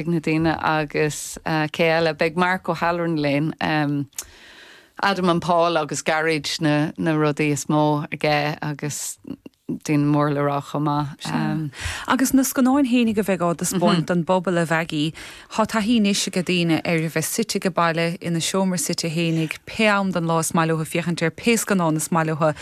Na daoine agus cé eile, beidh Mark O'Halloran linn, Adam and Paul agus Garage na rudaí is mó aige agus daoine mór le rá chomh maith. Agus na scannáin fhéinig a bheidh á dtaispeáint don bpobal a Mheaigí, tá taithí anois age daoine ar a bheith suite age baile ina seomra suite fhéinig pé am den lá is maith leo féachaint ar pé scannán is maith leo.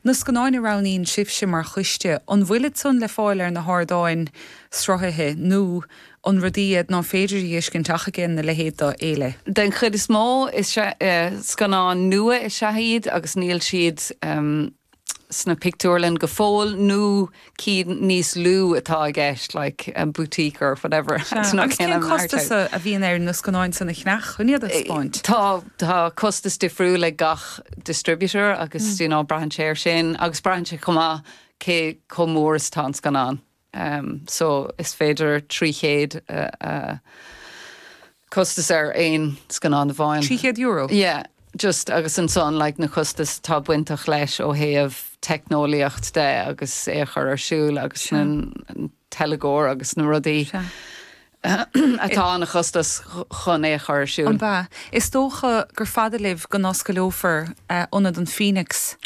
Na scannáin a roghnaíonn sibhse mar choiste, an bhfuilid san le fáil ar na hardáin sruthaithe nó. an rudaí iad ná féidir a dheiscint ach age'n a leithéid d'fhéile. Den chuid is mó is scannáin nua is ea iad agus níl siad sna pictiúrlainn go fóill nó cinn níos lú atá i gceist, like Boutique or whatever. Sea, agus cén costas a bhíonn ar na scannáin san a cheannach chun iad a thaispeáint? Tá, tá costas difriúil ag gach distributor agus you know braitheann sé ar sin agus braitheann sé chomh maith cé chomh mór is atá an scannán. so is féidir 300 costas ar aon scannán amháin. €300? Yeah, just agus ansan, like, na costas atá bainteach leis ó thaobh teicneolaíocht de agus é a chur ar siúl agus na teilgeoir agus na rudaí. atá ina chostas chun é a chur ar siúl. An b'ea? Is dócha gur fada libh go n-oscaileofar Ionad an Phoenix.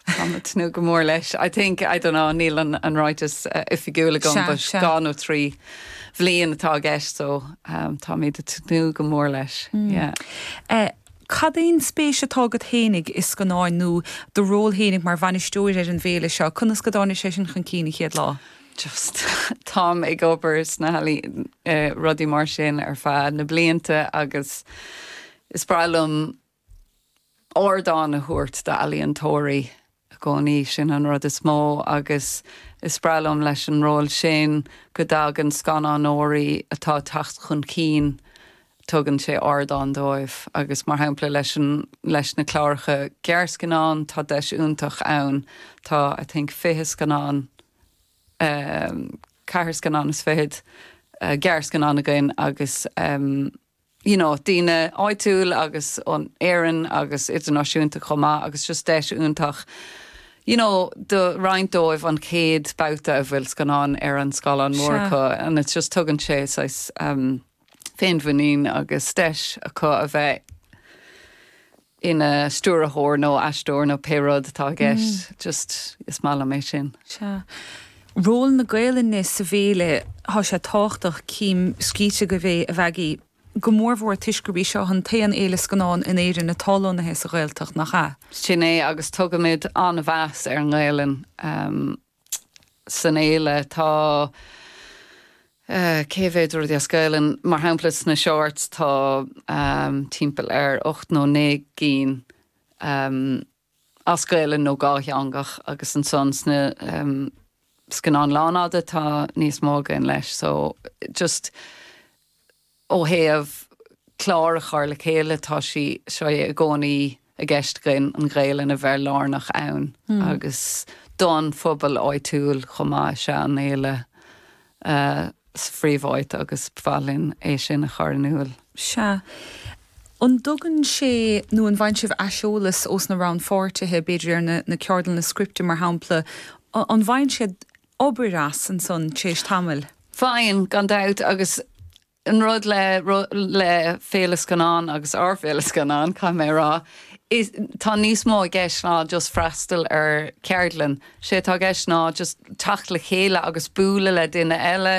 Táim ag tnúth go mór leis. I think, I don't know, níl an ráiteas oifigiúil agam but Sea, sea. dhá nó trí bhliain atá i gceist so táimid ag tnúth go mór leis. Yeah. Cad é an spéis atá agat fhéinig i scannáin nó do ról fhéinig mar bhainisteoir ar an bhféile seo? Conas go dtáinig sé san chun cinn an chéad lá? just táim ag obair sna healaíona, rudaí mar sin ar feadh na blianta agus is breá liom ardán a thabhairt d'ealaíontóirí i gcónaí sin an rud is mó agus is breá liom leis an ról sin go dtagann scannánóirí atá ag teacht chun cinn tugann sé ardán dóibh agus mar shampla leis an leis na cláracha gearrscannán tá deis iontach ann tá I think 20 scannán ceathair scannán is fichead gearrscannán againn agus you know daoine áitiúil agus ó Éirinn agus idirnáisiúnta chomh maith agus just deis iontach you know do roinnt dóibh an chéad babhta a bhfuil scannán ar an scáileán mór Sea. acu and it's just tugann sé saghas féinmhuinín agus deis acu a bheith ina stiúrthóir nó aisteoir nó pé rud atá i gceist, just is maith liom é sin. Sea. Ról na Gaelainne sa bhféile, tá sé tábhachtach, cím scríte agaibh é, a Mhaggie. Go mór mhór toisc gurb í seo chuin an t-aon fhéile scannán in Éirinn atá lonnaithe sa Ghaeltacht, nach ea? Sin é, agus tugaimid an-mheas ar an nGaelainn. san fhéile. Tá an-chuid rudaí as Gaelainn, mar shampla sna Shorts tá timpeall ar ocht nó naoi gcinn as Gaelainn nó dátheangach agus ansan sna scannáin lánfhada tá níos mó againn leis so just Ó thaobh clár a chur le chéile, tá sé seo i gcónaí i gceist againn an Ghaelainn a bheith lárnach ann agus don phobal áitiúil chomh maith. Is ea, an fhéile sa phríomháit agus ba mhaith linn é sin a chur in iúl. Sea. An dtugann sé nó an bhfaigheann sibh aiseolas ós na rannpháirtithe, b'fhéidir ar na ceardlanna scripte mar shampla, an bhfaigheann siad, obair as ansan tréis tamaill. Faigheann, gan dabht, agus an rud le le Féile Scannán agus ár bhFéile Scannán, caithfidh mé a rá, is tá níos mó i gceist ná just freastal ar cheardlann. Sé atá i gceist ná just teacht le chéile agus bualadh le duine eile,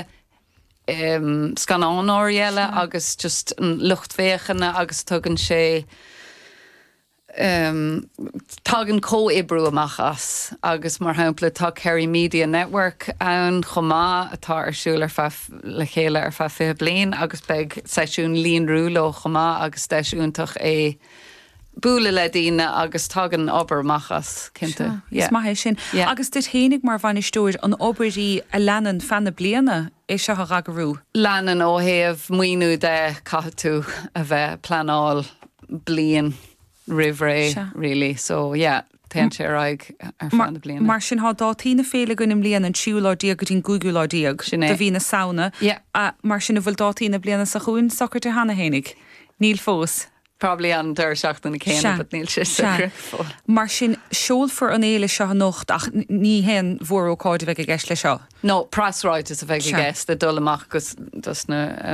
em, scannánóirí eile agus just lucht féachana agus tugann sé, tagann comhoibriú amach as agus mar shampla tá Kerry Media Network ann chomh maith atá ar siúl ar feadh le chéile ar feadh 20 bliain agus beidh seisiún líonrú leo chomh maith agus deis iontach é bualadh le daoine agus tagann obair amach as cinnte. Sure. Is maith é sin. Yeah. Agus duit fhéinig mar bhainisteoir, an obair í a leanann feadh na bliana é seo a dh'eagrú? Leanann ó thaobh maoiniú de caithfidh tú a bheith ag pleanáil bliain roimh ré really so yeah téann sé ar aghaidh ar feadh na bliana. Mar sin tá dátaí na féile againn i mbliana an 3ú lá déag go dtí an 5ú lá déag de mhí na Samhna. Mar sin an bhfuil dátaí na bliana seo chugainn socraithe cheana fhéinig? Níl fós. Probably an deireadh seachtaine céanna but níl sé socair fós. Mar sin seolfar an fhéile seo anocht ach ní haon mhór-ócáid a bheidh i gceist le seo. No preasráiteas a bheidh i gceist le dul amach go dos na.